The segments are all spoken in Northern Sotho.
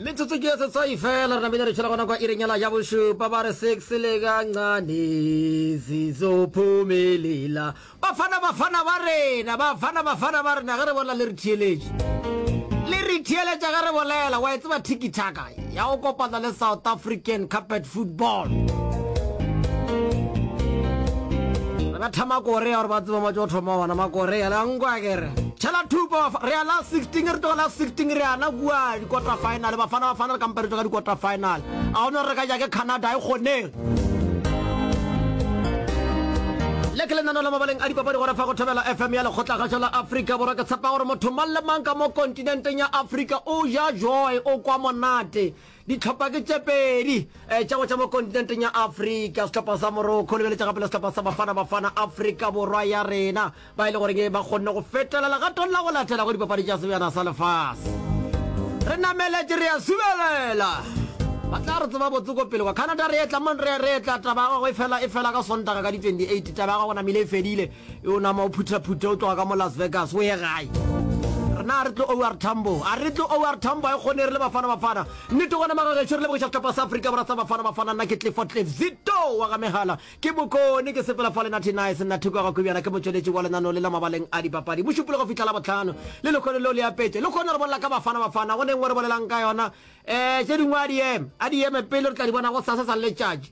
metsotso ke ya setswai fela re namile re tšhela gona kwa irenyela ya bošupa ba re six le kancane sizophumelela bafana bafana ba rena bafana bafana ba rena ge re bolela le re theeletše le re theeletša ge re bolela wa e tseba tikitaka ya go kopana le South African Carpet Football. Re betha Makorea gore ba tseba matso go thoma ona Makorea la nkwa kere. Tšhela thupo re ya la 16 re tloga la 16 re yana kua di-quarter final bafana bafana re kampa re tloga di-quarter final a gona re ka ja ke Canada e kgoneng le ke lenano la mabaleng a dipapadi gore fa go thobela fm ya lekgotla gašo la afrika borwa ke tshepa gore motho mang le mang ka mo kontša Kontinenteng ya Afrika o ja joy o kwa monate. Dihlopha ke tše pedi eh, tša go tša mo kontinenteng ya Afrika. Sehlopha sa Morocco lebeletša gape le sehlopha sa Bafana Bafana Afrika Borwa ya rena ba e le goreng ba kgonne go fetela legatong la go latela go dipapadi tša sebjana sa lefase. Re nameletše re a subelela ba tla re tseba botse ko pele kwa Canada re etla mon re re etla taba ya gago e fela e fela ka sontaga ka di 28 taba ya gago namile e fedile E o nama o phuthaphuthe o tloga ka mo Las Vegas o ye gae. Rena a re tlo OR Tambo. A re tlo OR Tambo a e kgone re le Bafana Bafana. Nnete gona maga gešo re lebogiša sehlopha sa Afrika Borwa sa Bafana Bafana nna ke Clifford Cliff Zito wa ga megala ke bokone ke sepela fa le Natty Nice nna thoko ya ga Kobjana ke motšweletši wa lenaneo le la mabaleng a dipapadi bošupolo go fihla la botlhano le lekgone leo le apetše le kgone re bolela ka Bafana Bafana go neng o re bolelang ka yona um tše dingwe a di eme a di eme pele re tla di bona go sasa sa letšatši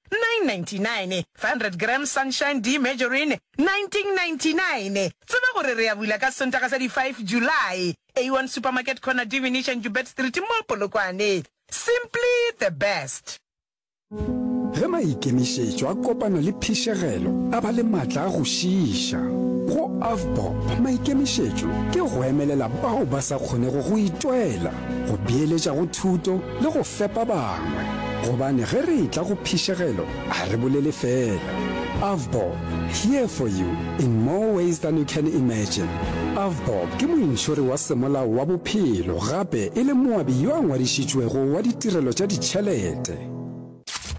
999 500 g Sunshine Demergerin 1999 Tseba gore re a bula ka Sontaga sa di 5 July A1 Supermarket Corner Divinish and Joubert Street mo Polokwane Simply the best. Ge maikemišetšo a kopana le phišegelo a ba le matla a go šiiša. Go Avbob maikemišetšo ke go emelela bao ba sa kgonego go itwela, go beeletša go thuto, le go fepa bangwe, gobane ge re etla go phišegelo ga re bolele fela. Avbob, here for you in more ways than you can imagine. Avbob ke mointšhori wa semolao wa bophelo gape e le moabi yo a ngwadišitšwego wa ditirelo tša ditšhelete.